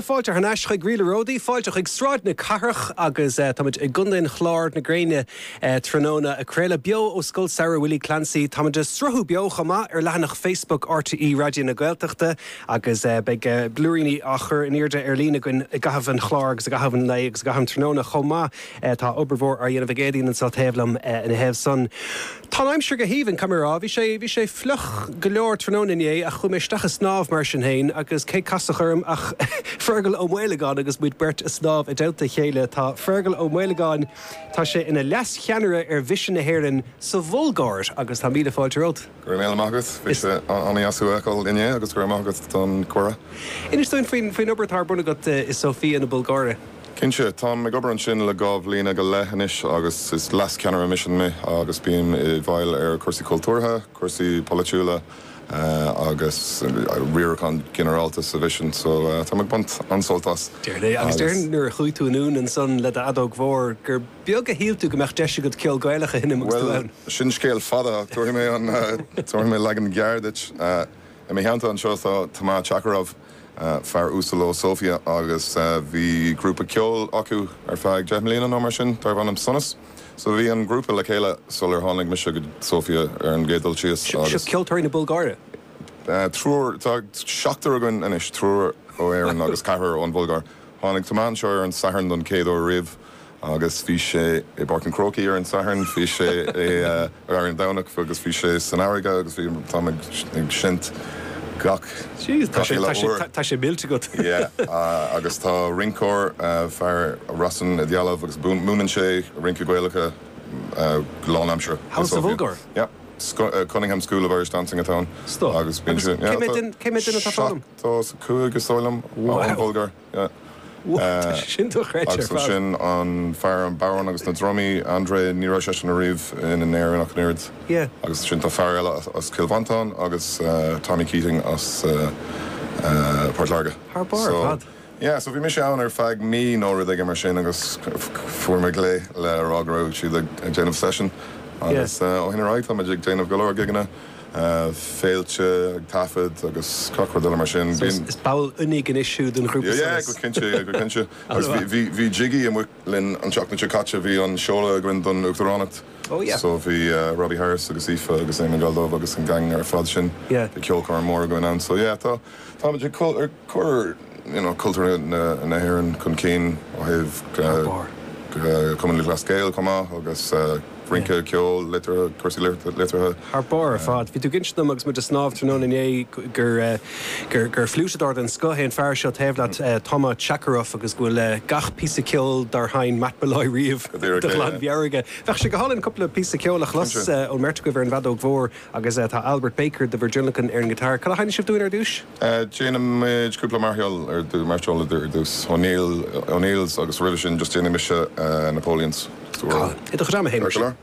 Fáilte thar n-ais chuig Ríleanna Ródaí, fáilte chuig Sráid na Cathrach agus táimid i gContae an Chláir, na gréine tráthnóna ag craoladh beo ó Scoil Samhraidh Willie Clancy. Táimid ag sruthú beo chomh maith ar leathanach Facebook RTÉ Raidió na Gaeltachta agus beidh blúiríní á gcur in airde ar líne againn i gcaitheamh an chláir agus i gcaitheamh an lae agus i gcaitheamh an tráthnóna chomh maith. Tá obair mhór á déanamh ag Éadaoin anseo taobh liom ina thaobh san. Tá an aimsir go haoibhinn, cá mbeifeá? Bhí sé, bhí sé fliuch go leor tráthnóna inné ach chuaigh mé isteach ag snámh mar sin féin agus cé casadh orm ach Fergal Ó Maolagáin agus muid beirt ag snámh i dteannta a chéile. Tá Fergal Ó Maolagáin, tá sé ina leas-cheannaire ar Mhisean na hÉireann sa Bhulgáir agus tá míle fáilte romhat. Go raibh míle maith agat, bhí sé an-dheas thú a fheiceáil inné agus go raibh maith agat don cuireadh. Inis dúinn faoin obair atá ar bun agat i Sóifia na Bulgáire. Cinnte. Táim ag obair ansin le dhá bhliana go leith anois agus is leas-cheannaire misin me agus bím i bhfeighil chúrsaí cultúrtha, cúrsaí polaitiúla agus riarachán ginearálta sa mhisean so táim ag baint an-sult as. Déarfainn é. Agus déarfainn nuair a chuaigh tú anonn ansan le do fheadóg mhór gur beag a shíl tú go mbeadh deis agat ceol Gaelach a sheinm agus tú Bhuel, ann. sin scéal fada ach tabharfaidh mé an, tabharfaidh mé leagan gearr duit. I mo theannta anseo tá Toma Chakarov. fear uasal ó Sofia agus bhí grúpa ceoil acu ar feadh deich mbliana nó mar sin darbh ainm Sonas. So bhí an grúpa le chéile sular tháinig mise go Sofia ar an gcéad dul síos Seo agus. ceoltóirí na Bulgáire? Triúr, tá seachtar againn anois, triúr ó Éirinn agus ceathrar ón Bhulgáir. Tháinig Toma anseo ar an Satharn don chéad uair riamh Agus bhí sé i bPáirc an Chrócaigh ar an Satharn, bhí sé i ar an Domhnach agus bhí sé san fharraige agus bhí, táim ag seinnt gach, gach uile uair. Tá sé millte agat. Yeah, agus tá rinceoir, fear, Rossen, i dhealbh agus múineann sé rince Gaelacha go lánaimseartha. House of Ugghair? Yeah. Cunningham School of Irish Dancing atá ann. Stop. Agus bíonn sé, yeah. Cé mhéad duine atá fágtha? Seachtó is a cúig is dóigh liom. Wow. An Bhulgáir. Agus ansin an fear, an bodhrán agus na drumaí, André, ní raibh seisean ariamh in Éirinn ach an oiread. Agus ansin tá fear eile as Cill Mhantáin agus Tommy Keating as Port Láirge. Thar barr ar fad. Yeah, so bhí mise ann ar feadh mí nó rud éigin mar sin agus fuair mé glao le rá go raibh siad ag déanamh session agus ó shin ar aghaidh tá muid ag déanamh go leor gigeanna. féilte, ag taifead agus gach rud eile mar sin. So Bíonn. is ball oinigh anois thú den ghrúpa Yeah, yeah, go Sonas? cinnte, yeah, go cinnte. An- Agus bhí, mhaith. bhí, bhí Jiggy amuigh linn an tseachtain seo caite, bhí an seoladh againn don Uachtaránacht. Oh yeah. So bhí eh, Robbie Harris agus Aoife agus Éamonn Galldubh agus an gang ar fad sin. Yeah. Bhí ceolchoirm mór againn ann. So yeah, tá. Táimid ag cur you know cultúr na hÉireann chun cinn ó thaobh Cumann Lúthchleas Gael chomh maith agus rince, ceol, liteartha, cúrsaí liteartha. Thar barr ar fad. Bhí tú ag insint dom agus muid ag snámh tráthnóna inné gur gur gur fliúiteadóir den scoth é an fear seo taobh leat, Toma Chakarov, agus go bhfuil gach píosa ceoil dár sheinn Matt Molloy riamh de ghlanmheabhair aige. Bheadh sé go hálainn cúpla píosa ceoil a chlos ón mbeirt agaibh ar an bhfeadóg mhór. Agus tá Albert Baker de Virgilican ar an ghiotár. Cad a sheinnfidh sibh dúinn ar dtús? Déanfaimid cúpla máirseáil ar dtús, máirseáil ar dtús, O'Neills agus roimhe sin just déanfaidh mise Napoleons. Tá. Tá. I do dhream a Shéamais.